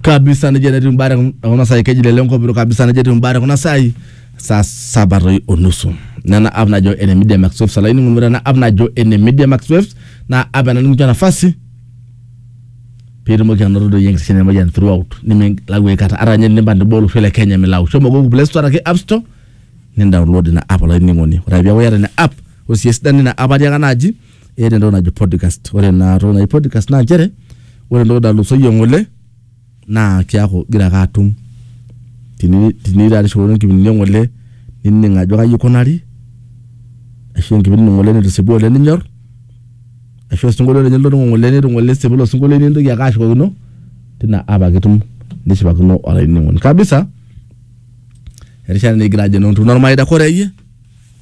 kabisa nejia netiu imbaa te kun- kuna saai keji lele nkopiro kabisa nejia etiu imbaa te kuna saai saa saba toi onusu nena app najo ene media max waves olainining'oni ore ena app najo ene media max waves naa app ena nikincho nafasi piitumoki anoto doi enkishin emoyian throughout nimilau aikata ata ninye tenimpang teboo olosho le kenya milau shomo google play store araki app store nindownload ina app olainining'oni ore ake peeku iyata ina app ore sii esidano ina app atiaka naaji eeta entoki najo podcast. Ore ina toki naji podcast naa nchere ore entoki nalusoyie ng'ole naa keaku igira ake atum teni tenitaarishore nkipindini e ng'ole nining' ajo kai ikunari ashu enkipindi ng'ole nitisipua oleng' ninyor ashu osinkolio ninye litoning'o ng'ole nitu ng'ole esipu ilo sinkolio nintoki ake ashukokino tina app ake itum nishipakino olainining'oni kabisa erishata naa igira ajo enoo ntumo ormareita koree iyie?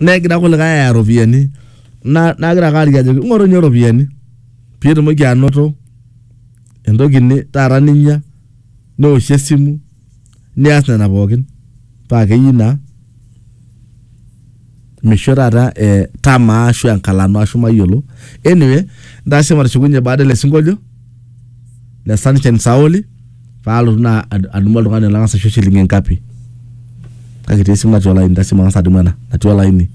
negira kulikae aya iropiyiani na- nagira ake aliki ajoki ing'oru ninye iropiyiani piitumoki anoto entoki ni- taata ninya neoshie esimu nias nena pookin paa keyieu naa misho taata eh, tamaa ashu enkalano ashu mayiolo anyway ntasho matushukunye baada ele sinkolio. le Sunshine Saoli paalotu naa ad- adumu oltung'ani lang'as aisho shilingi ngapi kake etii esimu natii olaini tasimu ang'as adumu ena natii olaini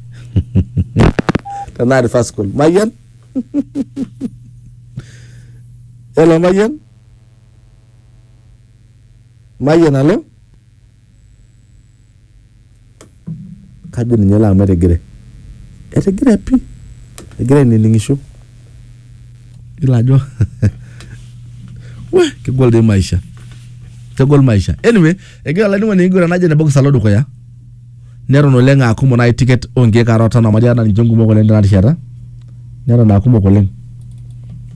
tenaa reverse call mayian hello mayian mayian alo kajo ninye elo amu etigire, etigire pii egira ainining'isho iyolo ajo wee kegol dei maisha, kegol maisha anyway egira olainining'oni aiguran najo ne bokiis alo dukuya neton oleng aa kumok nai ticket onkeek are o tano amu ajo nanu ninche kumok oleng tena rishata neton aa kumok oleng,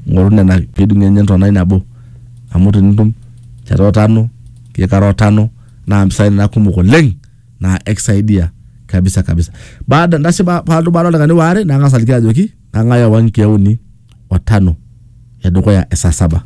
ing'oru nena piidung'ie ninye entonai nabo amu tenitum te otano. Ye kara otano naa mpisai nena kumok oleng naa ekisaidia kabisa kabisa. Baada ndasi ba paaltu baada oldakikani waare nang'as aliki ajoki kang'ae oowa nkiek uni o tano e dukuya e saa saba.